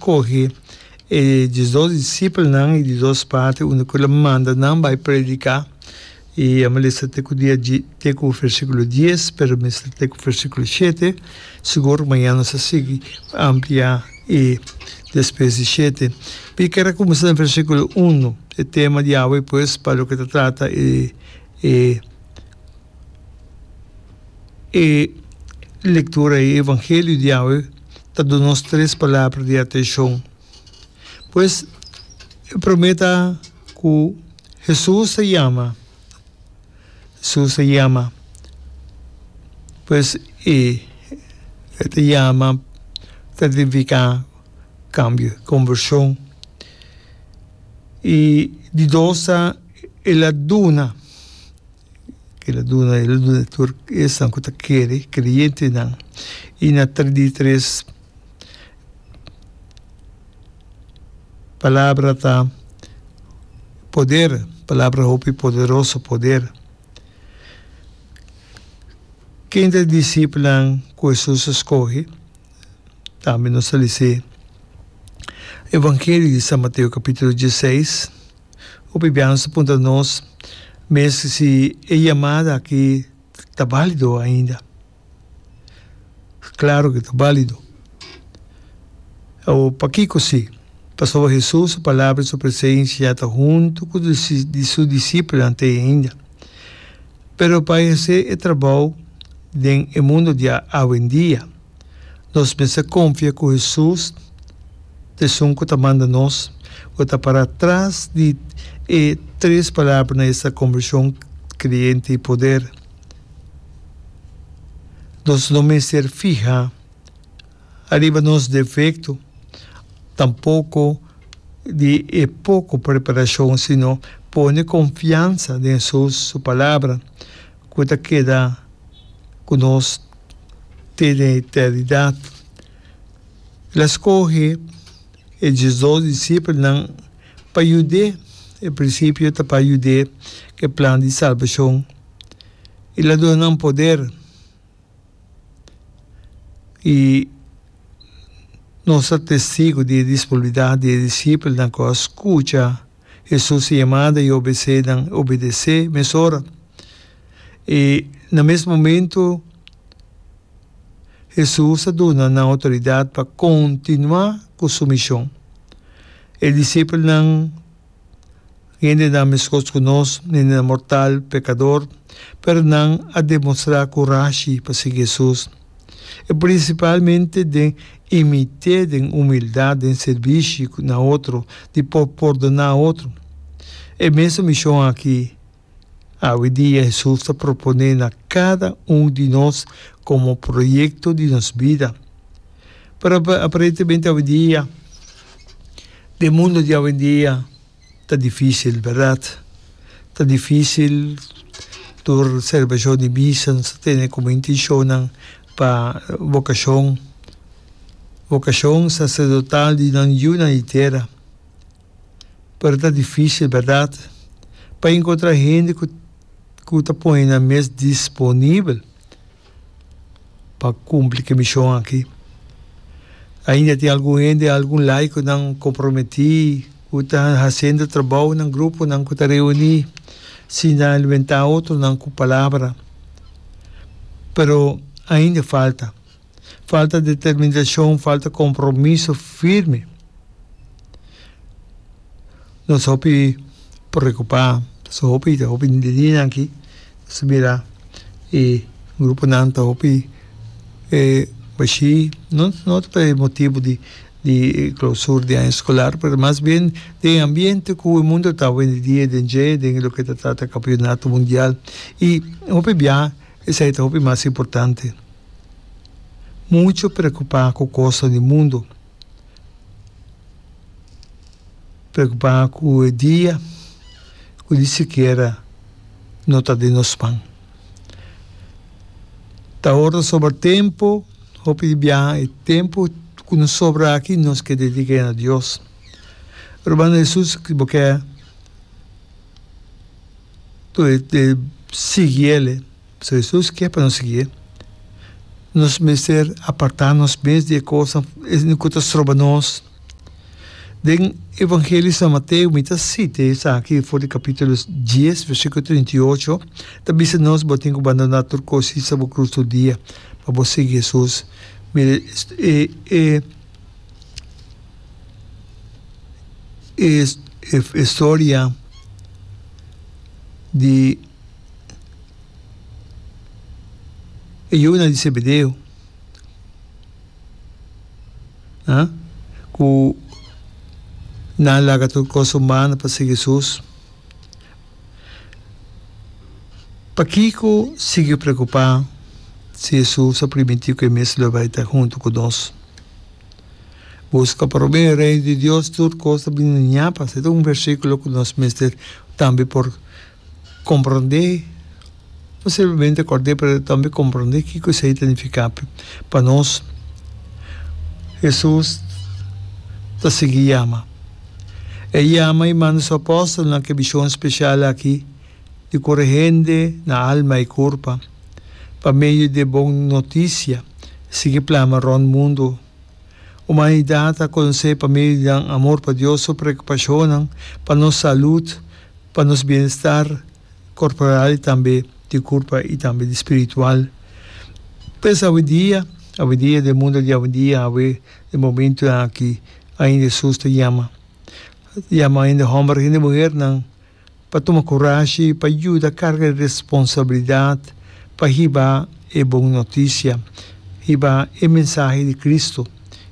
kohe e diesdos disipelnan i di dos parti unda ku el a manda nan bai prediká. I a mester te ku dia di te ku versíkulo dies, pero mester te ku versíkulo shete, sigur mañan nos a sigui ampliá e despues di shete. Mi ker a kuminsá den versíkulo unu, e tema di awe pues pa loke ta trata e e e lektura ei, e evangelio di awe. ta duna nos tres palabra di atenshon. Pues, e promé ta ku Hesus ta yama. Hesus ta yama. Pues, i e ta yama ta nifiká kambio, kombershon. I di dos ta, el a duna. Kil a duna, el a duna tur esnan ku ta kere, kreyentenan. I na ta di tres palabra ta poder, palabra hopi poderoso, poder. Ken ta e disipelnan ku Hesus a skohe? Tambe nos a lisi evangelio di San Mateo kapitulo dieseis. Hopi biaha nos a puntra nos mes si e yamada aki ta balido ainda. Claro ke ta balido. Awor, pakiko si? Pasobra Hesus su palabra i su presensia ya ta huntu ku su disipelnan te ainda. Pero pa e hasi e trabou den e mundu di awendia, Nos mester konfia ku Hesus, Esun ku ta manda nos, lo ta pará tras di e tres palabranan esta, konvershon, kreyente i poder. Nos no mester fihá ariba nos defekto, tampoko di e poko preparashon, sino pone konfiansa den Hesus, su palabra, ku ta keda ku nos. tene eternidat. El a skohe e diesdos disipelnan pa yud'é. E prinsipio ta pa yud'é ku e plan di salbashon. El a duna nan poder, i nos ta testigu di e disponibilidat di e disipelnan ku a skucha. Hesus a yamada i obesé nan obedesé mes ora. I na mes momentu Hesus a duna nan outoridat pa kontinuá ku su mishon. E disipelnan, hendenan meskos ku nos, hendenan mortal, pekador, pero nan a demostrá kurashi pa sigui Hesus. e prinsipalmente den i mit'é den humildat den sirbishi ku na otro di por pordoná otro. E mesun mishon aki awidia Hesus ta proponé na kada un di nos komo proyekto di nos bida. Pero aparentemente awidia den mundu di awendia Ta difisil, berdad. Ta difisil tur celebracion di misa nos ta tene como intencionnan pa vocacion, vocacion sacerdotal di nan yu na e tera. Pero ta difisil, berdad, pa encontra hende cu ta pone nan mes disponibel. pa cumpli ki mision aki. Ainda tin algun hende, algun laiconan comprometi cu ta haciendo trabao na gruponan cu ta reuni sin ta alimenta otronan cu palabra. Pero ainda falta. Falta determinacion, falta compromiso firme. nos hopi preocupa so hopi ta hopi de niña aki nos mira e grupo nan ta hopi e bashi no no ta por e motibo di di clausura di aña escolar pero mas bien den e ambiente cu e mundo ta awendia den dje den loke ta trata campeonato mundial y hopi bia esei ta hopi mas importante mucho preocupa cu cosnan di mundo. Preokupá ku e dia ku ni sikiera no ta den nos man. Ta ora ta sobra tempu, hopi di biaha e tempu ku no sobra aki nos ke dediké na Dios. Rubanan Hesus bo ke sigui el'e. So Jesus ke pa nos sigié, nos mester apartá nos mes di e kosnan esnan ku ta stroba nos. Den Evangelio di San Mateo, mi ta sita esaki for di kapítulo dies, versíkulo trinta i ocho, ta bisa nos, Bo tin ku bandoná tur kos i sa bo krus tur dia pa bo sigui Jesus. Mira e e e e storia di. E yunan di Zebedeo, ah, ku nan laga tur kos humano pa sigui Jesus, pakiko sigui preokupá si Jesus a primintí ku e mes lo bai ta huntu ku nos? Buska promé e reino di Dios, tur kos ta bini na ñapa. Se ta un versíkulo ku nos mester tambe por Komprondé, no simplemente kòrd'é pero tambe komprondé kiko esei ta nifiká pa nos. Hesus ta sigui yama. E yama i manda su apòstelnan ku e bishon speshal aki di kura hende na alma i kurpa pa medio di e bon notisia sigui plama rònt mundu. Humanidat a conoce pa medio di nan amor pa Dios su preocupacionnan pa nos salud, pa nos bienestar corporal y tambe di curpa y tambe di spiritual. Pues awendia, awendia den mundo di awendia awe den momentonan aki ainda Jesus ta yama, yama ainda homber, ainda muhernan. Pa tuma kurashi i pa yuda karga e responsabilidat pa hiba e bon notisia, hiba e mensahe di Kristu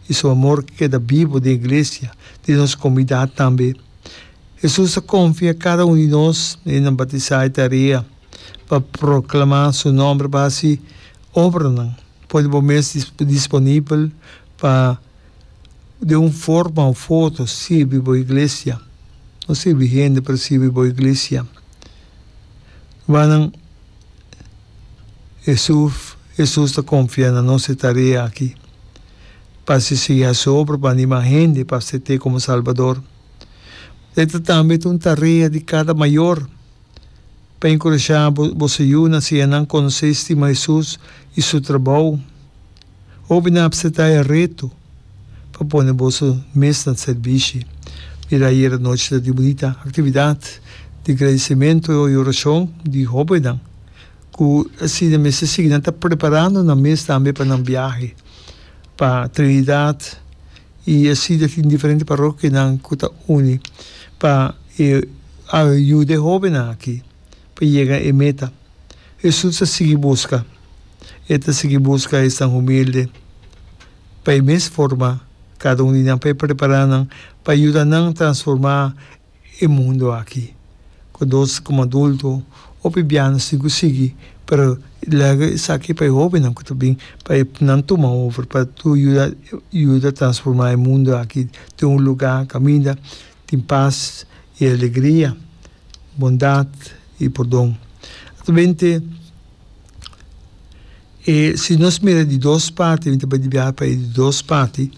i su amor ke keda bibu den iglesia di nos komunidat tambe. Hesus ta konfia kada un di nos, nenan batisá, e tarea pa proklamá su nòmber pa hasi obranan. Pone bo mes disponibel pa. de un forma of otro sirbi bo iglesia. No sirbi hende pa sirbi bo iglesia. Rubanan, Jesus, Jesus ta confia na nos e tarea aki. Pa haci señal su obra, pa anima hende pa acepte como Salbador. Pero esta tambe ta un tarea di cada mayor. pa enkurashá bo bo su yuna siña nan konosé stima Hesus i su trabou. Hopi nan a apseptá e reto pa pone boso mes na sèrbishi. Mira ayera nochi ta tin bunita aktividat di gradisimentu i orashon di hóbennan ku asina mester sigui nan ta preparando nan mes tambe pa nan biahe pa Trinidad i asi ta tin diferente parokianan ku ta uni pa e a yuda e hóbennan akí pa yega e meta. Hesus a sigui buska. E ta sigui buska esnan humilde. Pa e mes forma, kada un di nan por prepará nan pa yuda nan transformá e mundu akí. Ku nos komo adulto, hopi bia nos tin ku sigui, pero lègè esaki pa e hóbennan ku ta bin, pa e nan tuma over, pa yuda transformá e mundu akí den un lugá kaminda tin pas i alegria, bondat i pordon. Ta b'ente e si nos mira di dos parti, b'ente bai di biaha pa e di dos parti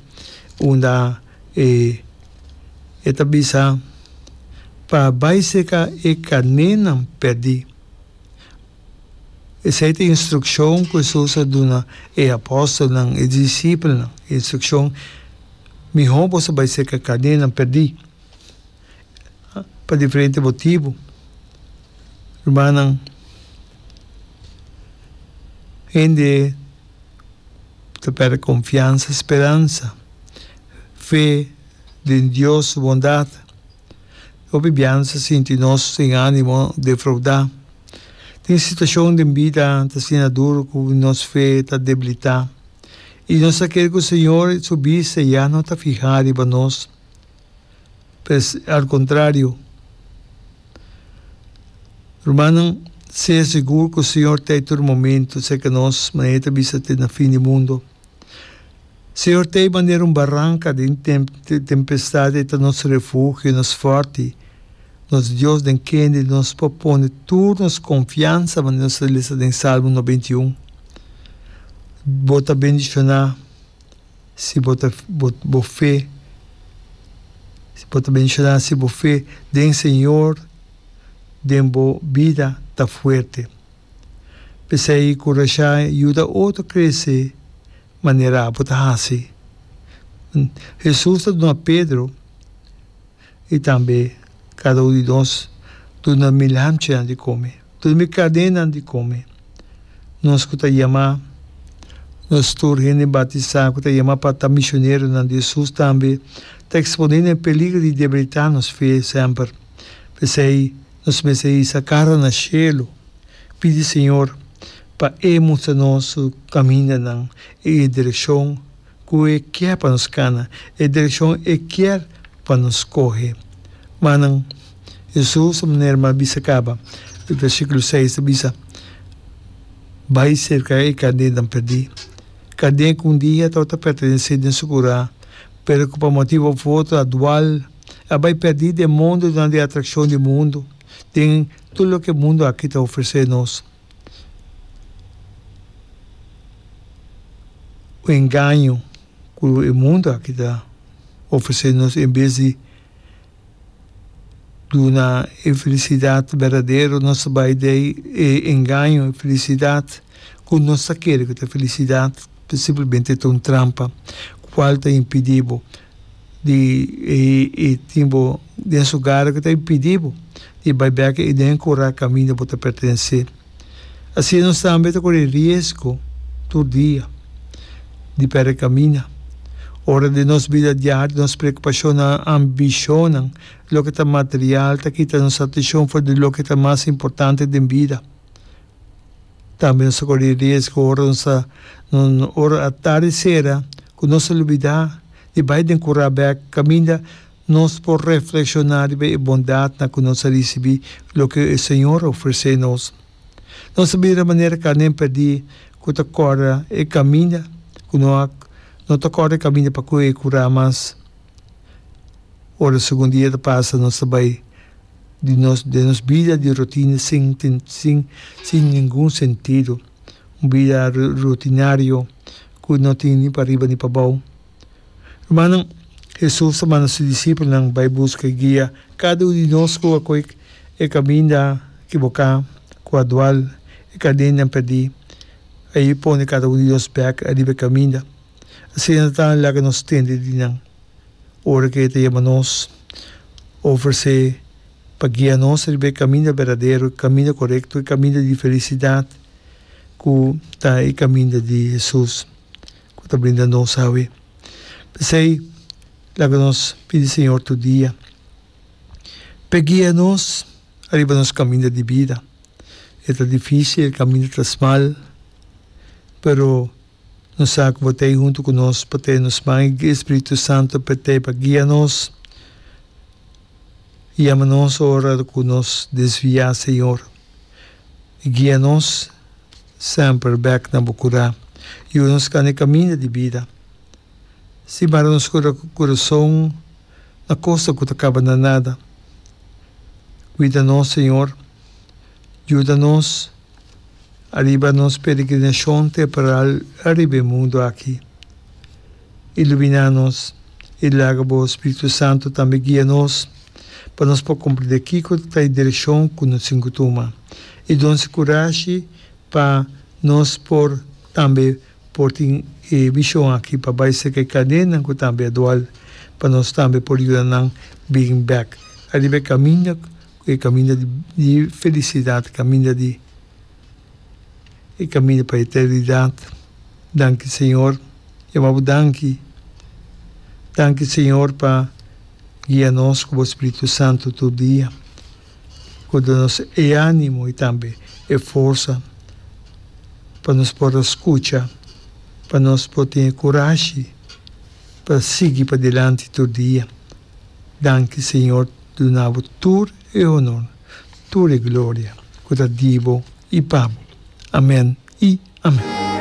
unda e e ta bisa pa bai seka e kanénan pèrdí. Esei ta e instrukshon ku Hesus a duna e apòstelnan, e disipelnan, e instrukshon, Mihó boso bai serka kadenanan pèrdí pa diferente motibu. Rumannan, hende ta pèrdè konfiansa, speransa, fe den Dios su bondat. Hopi bia nos a sinti nos sin animo, defraudá. Tin situacion den bida ta asina duru cu nos fe ta debilitá i nos ta kere cu Señor su bista ya no ta fihá riba nos. Pero al contrario, rumannan, sea sigur cu Señor ta e tur momento cerca nos manera e ta bisa te na fin di mundo. Señor ta ei manera un baranka den tempestad, e ta nos refugio i nos fòrti. Nos Dios den kende nos por pone tur nos konfiansa, manera nos ta lesa den Salmo noventa i un. Bo ta bendishoná si bo ta bo fe, bo ta bendishoná si bo fe den Señor, den bo bida ta fuerte. P'esei ku Rasha yuda otro krese manera apo ta hasi. Hesus ta duna Pedro i tambe kada un di nos duna mi lamchinan di kome, duna mi kadenan di kome. Nos ku ta yama, nos tur hende bautisá ku ta yama pa ta misioneronan di Hesus tambe ta eksponé na e peligro di debilitá nos fe semper. P'esei. Nos mester hisa cara na shelu, pidi Señor pa E mustra nos Su camindanan i e direccion cu E kier pa nos cana, e direccion E kier pa nos scoge. Manan, Jesús a manera m'a bisa caba, e versículo seis ta bisa, Bai cerca e carnenan perdí, carné cu un dia tabata pertenecí den Su curá, pero cu pa motibu afortunadwal, a bai perdí den mondonan di atrakshon di mundu, den tur loke mundu akí ta ofresé nos. Un engaño ku e mundu akí ta ofresé nos en bes di duna e felisidat berdadero, nos ta bai dei e engaño, e felisidat ku nos ta kere ku ta felisidat, pero simplemente ta un trampa, kual ta impidí bo. di e e tin bo den su gara ku ta bin pidi bo di bai bèk e den kura kaminda bo ta pertensé. Asina nos tambe ta kore riesgo tur dia di pèrdè kaminda. Ora den nos bida diario nos preokupashonnan, ambishonnan, loke ta material ta kita nos atishon for di loke ta mas importante den bida. Tambe nos ta kore riesgo ora nos ta ora a tardi sera Ku nos a lubidá di bai den kurá bèk kaminda nos por reflekshoná riba e bondatnan ku nos a risibí loke e Señor a ofresé nos. Nos a bira manera Kanen pèrdí ku ta kòrda e kaminda ku no a no ta kòrda e kaminda pa kohe e kurá mas. Ora segun dia ta pasa nos ta bai di nos den nos bida di rotina sin sin sin ningun sentido, un bida rutinario. ku no tin ni pariba ni pabou. Rumannan, Hesus a manda su disipelnan bai buska i guia kada un di nos ku a koe e kaminda kiboká, ku a dual, e kadennan pèrdí. Ai e pone kada un di nos bèk ariba e kaminda. Asina ta tamba laga nos tende di nan ora ku e ta yama nos, ofresé pa guia nos riba e kaminda berdadero, e kaminda korekto, e kaminda di felisidat. ku ta e kaminda di Hesus ku ta brinda nos awe. P'esei, laga nos pidi Señor tur dia p'E guia nos ariba nos kaminda di bida. E ta difísil, e kaminda ta smal, pero no sa ku bo ta ei huntu ku nos pa tene nos man i e Spiritu Santu p'E ta ei pa guia nos i yama nos ora ku nos desviá, Señor. Guia nos semper bek na bo kura. Yuda nos kanda e kaminda di bida. Si mara nos kura ku kurason na kosa ku ta kaba na nada. Kuida nos, Señor. Yuda nos ariba nos peregrinashon temporal ariba e mundu aki. Ilumina nos i laga bo Spiritu Santu tambe guia nos pa nos por kumprendé kiko ta e direkshon ku no tin ku tuma i don si kurashi pa nos por tambe por tin e bishon aki pa bai serka e kadennan ku tambe a dual pa nos tambe por yuda nan bin bèk ariba e kaminda ku e kaminda di felisidat kaminda di e caminda pa eternidad. Danki Señor, e wou Bo danki. Danki Señor pa guia nos cu Bo Spiritu Santo tur dia, cu duna nos e animo y tambe e forsa pa nos por a scucha, pa nos por tin e curashi pa sigui padilanti tur dia. Danki Señor, dunabo tur e honor. tur e gloria ku ta di bo i pa bo. Amen i amen.